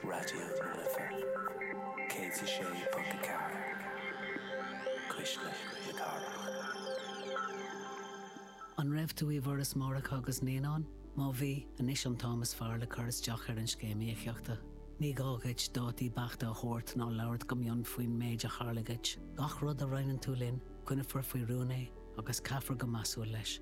Raidió na Life 106.4, cuisle na cathrach. An raibh tú i bhForas Máithreacha agus Naíonán? Má bhí, anois an t-am is fearr le cur isteach ar an Scéim Íocaíochta. Ní gá dhuit dátaí beachta a thabhairt ná labhairt go mion faoin méid a tharla dhuit. Gach rud a roinneann tú linn, coinneofar faoi rún é agus caithfear go measúil leis.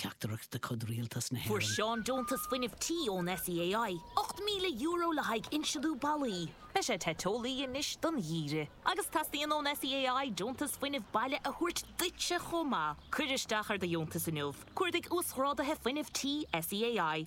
Teachtaireacht de chuid Rialtas na hÉireann. Fuair Seán deontas Fuinneamh Tí ón SEAI, €8,000 le haghaidh insealú ballaí. Beidh sé te teolaí anois don gheimhreadh. Agus teastaíonn ón SEAI deontas Fuinneamh Baile a thabhairt duitse chomh maith. Cuir isteach ar do dheontas inniu, Cuardaigh Uasghráduithe Fuinneamh Tí SEAI.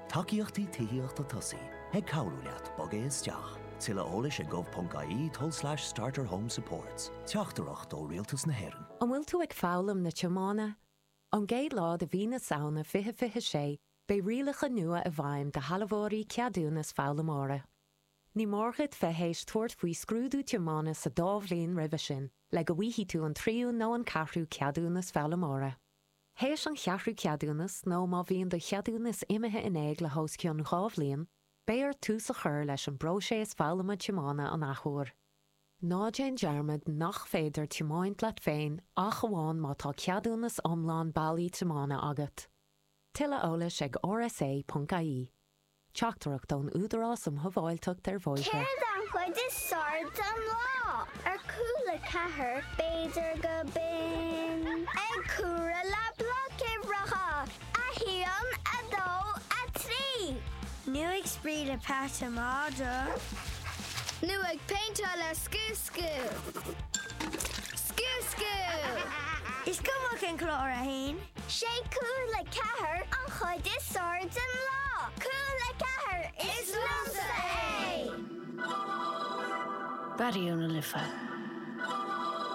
Tacaíochtaí Tithíochta Tosaithe ag cabhrú leat bogadh isteach. Tuilleadh eolais ag gov.ie tulslais starterhomesupports, Teachtaireacht ó Rialtas na hÉireann. An bhfuil tú ag foghlaim na tiomána? Ón gcéad lá de mhí na Samhna 2026, beidh rialacha nua i bhfeidhm do shealbhóirí ceadúnas foghlaimeora. Ní mór dhuit bheith théis tabhairt faoi scrúdú tiomána sa dá bhliain roimhe sin le go bhfaighidh tú an tríú nó an ceathrú ceadúnas foghlaimeora. Théis an cheathrú ceadúnas, nó má bhíonn do cheadúnas imithe in éag le hos cionn dhá bhliain, beidh ort tús a chur leis an bpróiseas foghlama tiomána an athuair. Ná déan dearmad nach féidir tiomáint leat féin ach amháin má tá ceadúnas iomlán bealaí tiomána agat. Tuilleadh eolais ag rsa.ie. Teachtaireacht ón Údarás um Shábháilteacht ar Bhóithre. Céard an chuid is fearr den lá? Ar Cúla4, b'fhéidir go binn. Ag comhaireamh le Blocuimhreacha, a haon, a dó, a trí. Nó ag spraoi le Patról Madra. Nó ag péinteáil le scúscú. Scúscú! Is cuma cén clár é. 'Sé Cúla4 an chuid is fearr den lá. Cúla4, is liomsa é! Raidió na Life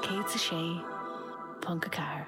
106.4.